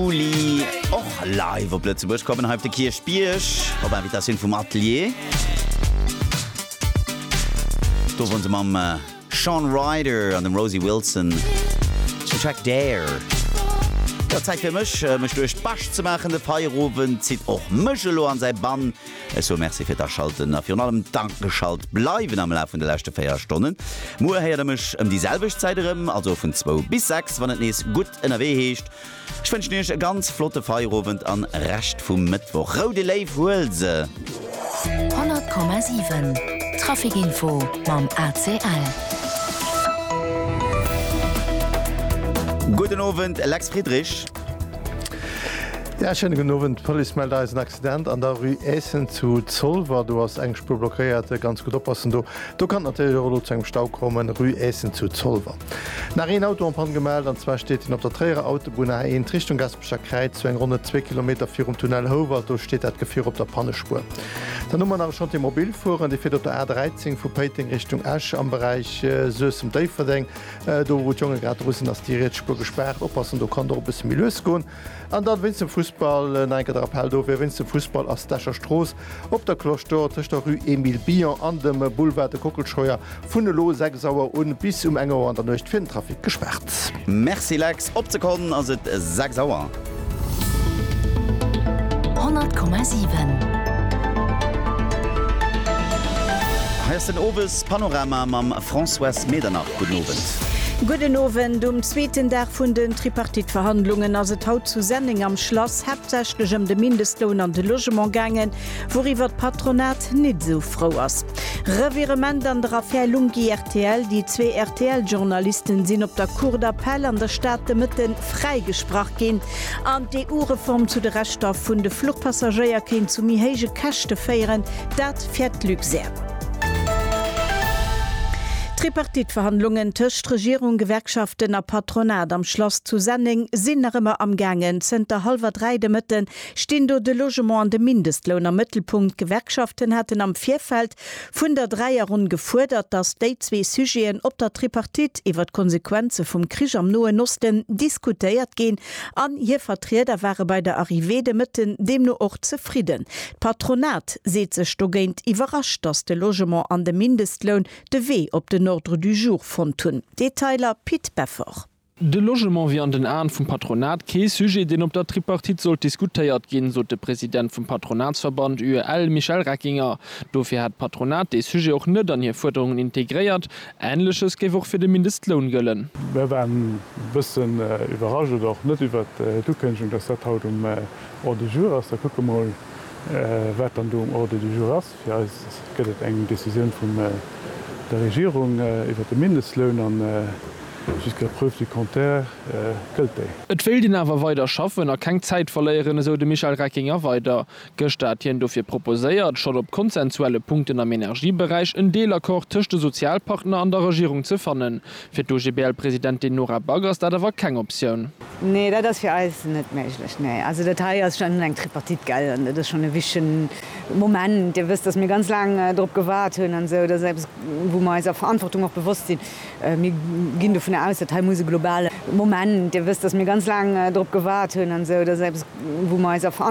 Juli och live op Lëtzebuerg kommen, hei op de Kierchbierg op Invitatioun vum Atelier. Do won se mam äh, Sean Ryder an dem Rosie Wilson den Track Dare. Ja, Zäit fir mech, äh, mech duerch d'Bascht ze maachen. De Feierowend zitt och mech elo an säi Bann. Ech soe Merci fir d'Aschalten a virun allem d'Ageschalt bleiwen am Laf vun de leschte 4 Stonnen. Muer héiert der mech ëm déi selwecht Zäit erëm, also vun zwou bis sechs, wann et nees gutt ënnerwee heescht. Ech wënschen iech e ganz flotte Feierowend an Rescht vum Mëttwoch. Rou de Léiw, huel se! 100,7 Traficinfo mam ACL. Gudden Owend, Lex Friedrich. Ja, schéine gudden Owend. D'Police mellt eis en Accident an der Rue Eessen zu Zolwer. Do ass eng Spuer blockéiert. Ganz gutt oppassen do. Do kann et natierlech och elo zu engem Stau kommen, Rue Eessen zu Zolwer. Nach een Auto en Panne gemellt, an zwar steet deen op der Tréierer Autobunn A 1 Richtung Gaspecher Kräiz, sou eng ronne zwee Kilometer virum Tunnel Houwald. Do steet dat Gefier op der Pannespuer. Dann hu mer nach e Chantier mobil fueren, dee fiert op der A 13 vu Péiteng Richtung Esch am Beräich Suessem-Déifferdeng. Do wou d'Jonge grad dru sinn, ass déi riets Spuer gespaart. Oppassen, do kann et och e bësse méi lues goen. An dann wéinst dem Fussball nach eng Kéier de Rappell, dofir, wéinst dem Fussball ass d'Escher Strooss op der Cloche d'Or tëscht der Rue Emile Billon an dem Boulevard de Kockelscheuer vun elo 6 Auer un bis um eng Auer an der Nuecht fir den Trafic gespaart. Merci Lex, op d'Sekonn ass et 6 Auer. 100,7. Hei ass den Owes Panorama mam Françoise Medernach. Gudden Owend. Gudden Owend. Um zweeten Dag vun den Tripartite-Verhandlungen ass et haut zu Senneng am Schlass haaptsächlech ëm de Mindestloun an de Logement gaangen, wouriwwer d'Patronat nit esou frou ass. Revirement an der Affär Lunghi-RTL, Déi zwee RTL-Journalisten sinn op der Cour d'Appel an der Stad de Mëtten fräigesprach ginn an d'EU-Reform zu de Rechter vun de Fluchpassagéier kéint zu méi héije Käschte féieren, dat fäert d'Luxair. D'Tripartite-Verhandlungen tëscht Regierung, Gewerkschaften a Patronat am Schlass zu Senneng sinn nach ëmmer am gaangen. Zënter hallwer dräi de Mëtte stinn do de Logement an de Mindestloun am Mëttelpunkt. D'Gewerkschaften haten am Virfeld vun der Dräierronn gefuerdert, datt déi zwee Sujeten op der Tripartite iwwer d'Konsequenze vum Krich am Noen Osten diskutéiert ginn an hir Vertrieder ware bei der Arrivée de Mëtten deemno och zefridden. D'Patronat seet sech dogéint iwwerrascht, datt de Logement an de Mindestloun de Wee op den Ordre du jour fonnt hunn. Detailer, Pit Beffort. De Logement wier an den Aen vum Patronat kee Sujet, deen op der Tripartite sollt diskutéiert ginn, sot de President vum Patronatsverband UEL, Michel Reckinger. Dofir hätt d'Patronat dee Sujet och net an hir Fuerderungen integréiert. Änleches géif och fir de Mindestloun gëllen. Mir waren e bëssen iwwerrascht, oder och net, iwwert d'Ukënnegung, datt dat haut um Ordre du jour ass. Da kucke mer emol, wat dann do um Ordre du jour ass. Fir eis gëtt et eng Décisioun vun der Regierung iwwert de Mindestloun a jusqu'à preuve du contraire gëllt déi. Et wéilt een awer weider schaffen a keng Zäit verléieren, esou de Michel Reckinger weider. Gëschter hat hien dofir proposéiert, schonn op konsensuelle Punkten am Energieberäich en Deelaccord tëscht de Sozialpartner an der Regierung ze fannen. Fir d'OGBL-Presidentin Nora Back ass dat awer keng Optioun. Nee, dat ass fir eis net méiglech. Nee, also dat hei ass schonn eng Tripartite, gell, an dat ass schonn e wichtige Moment. Dir wësst, datt mir ganz laang dorop gewaart hunn an esou. Dat ass eppes, wou mer eiser Verantwortung och bewosst sinn. Mir ginn dovun aus, datt hei muss e globale. Moment. Dir wësst, datt mir ganz laang dorop gewaart hunn an esou. Dat ass eppes, wou mer eiser Verantwortung.